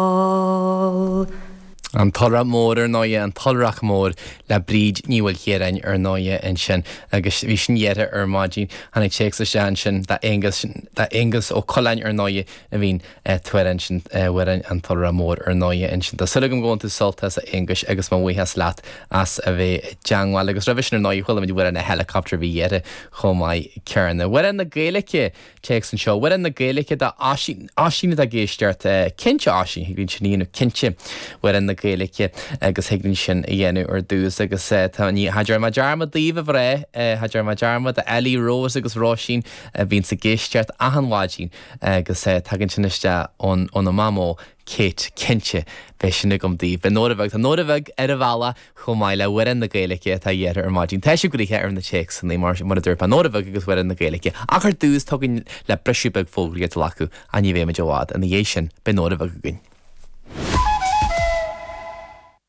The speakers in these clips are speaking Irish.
Ball. An tIolrach Mór ar ndóighe, an tIolrach Mór le Bríd Ní Mhaoilchiaráin ar ndóighe ansin agus bhí sin iarrtha ar maidin. Tháinig téacs isteach ansin d'Aonghus, d'Aonghus Ó Coileáin ar ndóighe a bhí an t-amhrán sin, Amhrán an tIolrach Mór ar ndóighe ansin. Tá súil agam gur bhain tú sult as a Aonghus agus mo bhuíochas leat as a bheith i dteangmháil agus roimhe sin ar ndóighe chuala muid Amhrán an helicopter a bhí iarrtha chomh maith céanna. Amhrán na Gaeilice Téacs anseo, Amhrán na Gaeilge d'Oisín, Oisín atá ag éisteacht, cinnte Oisín, thig linn sin a dhéanamh cinnte, Amhrán na Gaeilge, agus thig linn sin a dhéanamh ar dtús agus tá ní cha dtearn mé dearmad daoibh a bhreá, cha dtearn mé dearmad d'Ellie, Rose agus Róisín, bhíonns ag éisteacht achan mhaidin agus tagann sin isteach óna mamó. Kate, Cinnte, beidh sin agam daoibh. Beidh Nóra Bheag, tá Nóra Bheag ar an bhealach chomh maith le hAmhrán na Gaeilge atá iarrtha ar maidin tá sibh gnoitheach ar na téacsanna mar, mar a dúirt mé, Nóra Bheag agus Amhrán na Gaeilge. Ach ar dtús tá againn le briseadh beag fógraí a ghlacadh ach ní bheimid i bhfad ina dhiaidh sin. Beidh Nóra Bheag againn.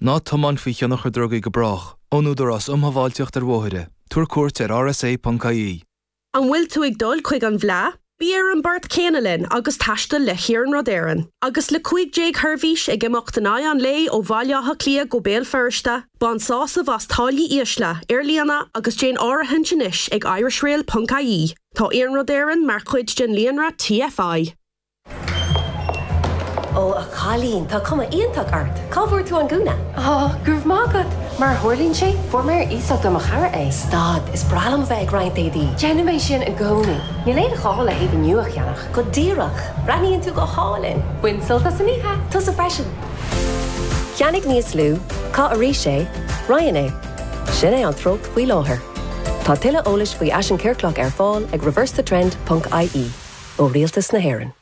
Ná tiomáin faoi thionchar drugaí go brách. Ón Údarás Um Shábháilteacht ar Bhóithre. Tabhair cuairt ar rsa.ie. An bhfuil tú ag dul chuig an bhFleá? Bí ar an bport céanna linn agus taistil le hIarnród Éireann. Agus le 15 sheirbhís ag imeacht in aghaidh an lae ó Bhaile Átha Cliath go Béal Feirste, bain sásamh as táillí ísle ar líne agus déan áirithint anois ag irishrail.ie. Tá Iarnród Éireann mar chuid den líonra TFI. Ó a chailín, tá cuma iontach ort. Cá bhfuair tú an gúna? Ó, go raibh maith agat. Mar a tharlaíonn sé, fuair mé ar iasacht ó mo chara é. Stad, is breá liom a bheith ag roinnt éadaí. Déanaim é sin i gcónaí. Níl aon ghá le héadaí nua a cheannach. Go díreach. Breathnaíonn tú go hálainn. Bain sult as an oíche. Tusa freisin. Ceannaigh níos lú. Caith arís é. Roinn é. Sin é an treocht faoi láthair. Tá tuilleadh eolais faoi fhaisean ciorclach ar fáil ag reversethetrend.ie ó Rialtas na hÉireann.